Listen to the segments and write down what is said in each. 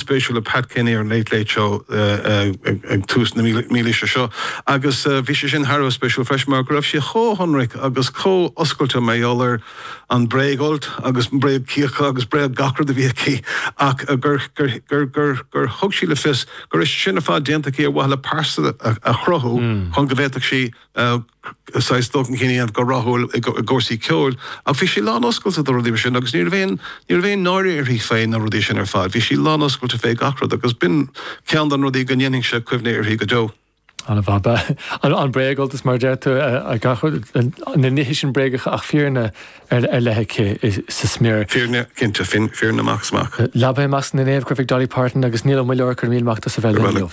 spéisiúil le Pat Kenny ar an Late Late Show ag tús na mílaoise seo agus bhí sé sin thar a bheith spéisiúil freisin mar go raibh sí chomh hionraic agus chomh oscailte mar gheall ar an bréagfholt agus na bréagchíocha agus bréag gach rud a bhí aici ach gur gur gur gur thug sí le fios gur é sin ar fad déanta aici ar mhaithe le pearsa a chruthú chun go bhféadfadh sí saghas dul chun cinn a dhéanamh go rathúil i gcúrsaí ceoil. Ach bhí sí lánoscailte do rudaí mar sin agus ní raibh aon, ní raibh aon náire uirthi fé na rudaí sin ar fad. Bhí sí lánoscailte fé gach rud agus b'in ceann de na rudaí go ndéanfaidh mise cuimhne uirthi go deo. An bhaba, an bréagfholt mar a deir tú, na nithe sin bréagacha ach fírinne ar leith aici sa smior. Fírinne, cinnte, fírinne amach is amach. Leaba i measc na naomh ag Dolly Parton agus Niall Ó Muilleoir, go raibh míle maith agat as a bheith linn inniu.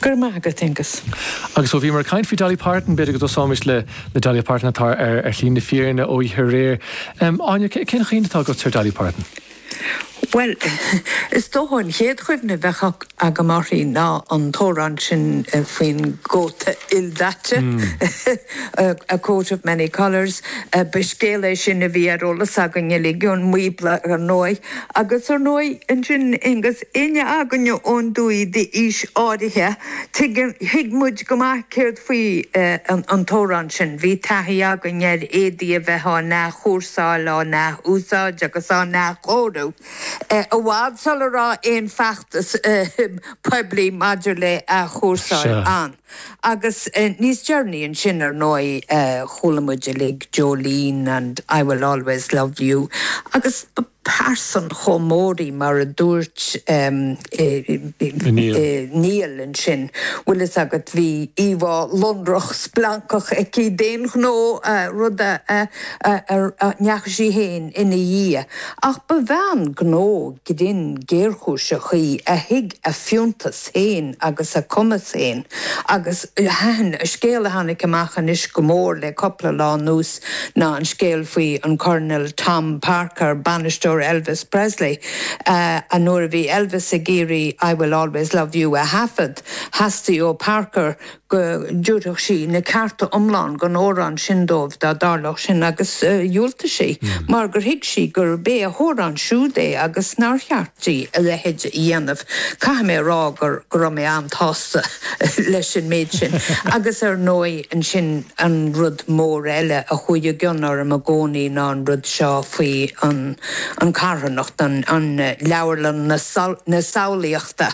Go raibh maith agat, Aonghus. Agus ó bhíomar ag caint faoi Dolly Parton, b'fhéidir go dtosóimis le Dolly Parton atá ar shlí na fírinne ó oíche aréir. Áine, cén chuimhne atá agatsa ar Dolly Parton? Bhuel, is dócha an chéad chuimhne a bheadh agam uirthi ná an t-amhrán sin faoin gcóta ildaite, A Coat of Many Colours. Ba scéal é sin a bhí ar eolas againn uilig ón mBíobla, ar ndóigh. Agus, ar ndóigh, ansin, agus éinne againn ón dtuaith d'aois áirithe, tuigeann, thuig muid go maith céard faoi an t-amhrán sin. Bhí taithí againn ar éadaí a bheith á n-athchúrsáil, á n-ath-úsáid agus á n-athchóiriú, i bhfad sula raibh aon feachtas poiblí maidir le athchúrsáil ann. Agus níos deireanaí ansin, ar ndóigh, chuala muid uilig Jolene and I Will Always Love You agus ba pearsa chomh mór í mar a dúirt Niall ansin, bhfuil fhios agat, bhí íomhá lonrach splancach aici d'aon ghnó, rud a ndeachaigh sí féin ina dhiaidh. Ach ba bhean gnó grinn géarchúiseach í a thuig a fiúntas. féin agus a cumas féin agus thaitin an scéal a tháinig amach anois go mór liom cúpla lá anuas ná an scéal faoi an Coirnéal Tom Parker, bainisteoir Elvis Presley, a nuair a bhí Elvis ag iarraidh 'I Will Always Love You' a thaifead, theastaigh ó Parker go dtabharfadh sí na cearta iomlán don amhrán sin dóibh dá dtarlódh sin agus dhiúltaigh sí mar gur thuig sí gurb é a hamhrán siúd é agus nár cheart di a leithéid a dhéanamh. Caithfidh mé a rá gur go raibh mé an-tsásta leis an méid sin agus ar ndóigh ansin an rud mór eile a chuaigh i gcion orm i gcónaí ná an rud seo faoi an carthanacht, an leabharlann na samhlaíochta.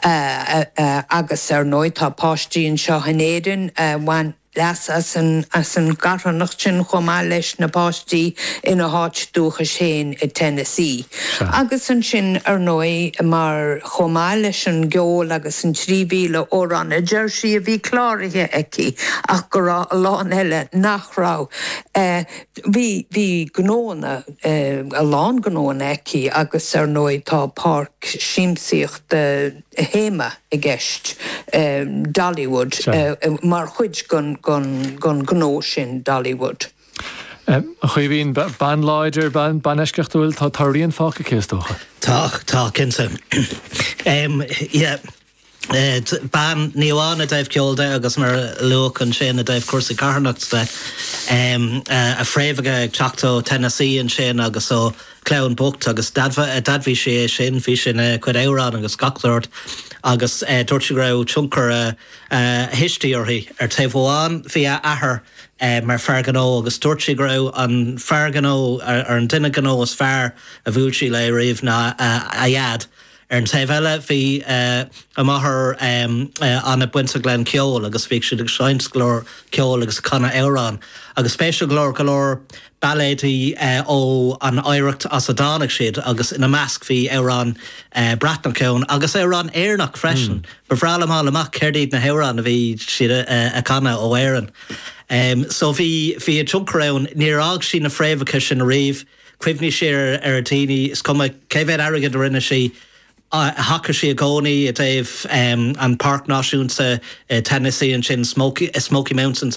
Agus, ar ndóigh, tá páistí anseo in Éirinn a bhain leas as an gcarthanacht sin chomh maith leis na páistí ina háit dúchais féin i Tennessee. Agus ansin, ar ndóigh, mar chomh maith leis an gceol agus an 3,000 amhrán a deir sí a bhí cláraithe aici ach go raibh a lán eile nach raibh, Bhí, bhí gnóanna, a lán gnóanna aici agus ar ndóigh tá páirc siamsaíochta, théama i gceist, Dollywood, mar chuid den ghnó sin, Dollywood. A Chaoimhe, bean láidir, bean eisceachtúil, tá rian fágtha aici is dócha? Tá, tá, cinnte. Yeah. bean, ní amháin i dtaobh ceoil de agus, mar a luadh ansin, i dtaobh cúrsaí carthanachta de, a fréamhacha ag teacht ó Tennessee ansin agus ó chlann bhocht agus d'admhaigh sí é sin, bhí sin ina cuid amhrán agus gach sórt agus dúirt sí go raibh tionchar a thuistí uirthi. Ar taobh amháin bhí a hathair mar fear gnó agus dúirt sí go raibh an fear gnó ar an duine gnó is fearr a bhuail sí léi riamh ná a daid, Ar an taobh eile, bhí a máthair ana-bhainteach le ceol agus bhíodh siad ag seinmt go leor ceoil agus ag canadh amhrán. Agus spéisiúil go leor, go leor bailéidí ó an oidhreacht as a dtáinig siad agus ina measc bhí amhráin Bhreatnacha ann agus amhráin Éireannacha freisin. Ba bhreá liom fháil amach céard iad na hamhráin a bhí siad a chanadh ó Éirinn. So bhí bhí an tionchar ann. Níor fhág sí na fréamhacha sin ariamh. Chuimhnigh sí ar a daoine, is cuma cé mhéad airgid a rinne sí, thacaigh sí i gcónaí i dtaobh an Páirc Náisiúnta Tennessee ansin, Smoky Mountains,